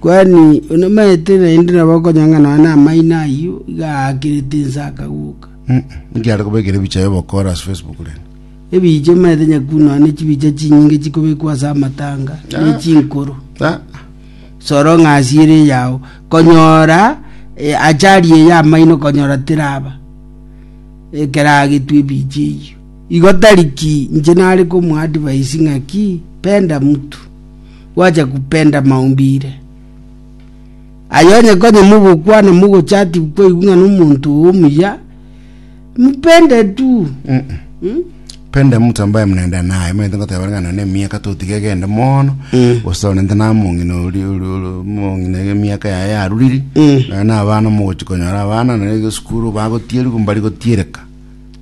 Kuhani onomaete naende nabo okonyanga nonya namaino ayio, iga aakirete inse akaguka. Mm, Nki are kobekera ebicha y'obokora ase Facebook rende? Ebiicha omaete nyakuu nonya ne chibiicha chinyinge chikobekwa ase amatanga, ne chinkoro. Ah, soro ng'a asiere eyao konyora eh, achari eye amaino konyora teraba ekero agetwa ebicha eyio igo tari ki inche nare komo advise ng'a ki penda mtu gwacha kupenda maumbire. Aye onye konye mogokwana mogochati koigwa ng'a nomonto omuya, mupende tu. Mm? pende mtu ambaye mnaenda naye maete ngoteba ng'a none emiaka totiga egende mono Mm. gose onente na mong'ina ori ori- ori- mong'ina ege emiaka yaye yaruriri Mm. naye na abana mogochi konyora abana nere esukuru bagotieria mbari gotiereka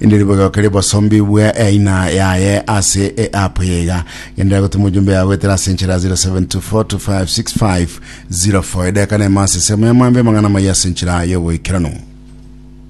Inde ribogoke ribosombigwe eina yaye ase eapu eye iga. Genderera gotuma ojumbe yago goetera ase enchera ya 0724256504. Edageka na emo ase ensemo ya maambia amang'ana amaya ase enchera y'ogoikeranu.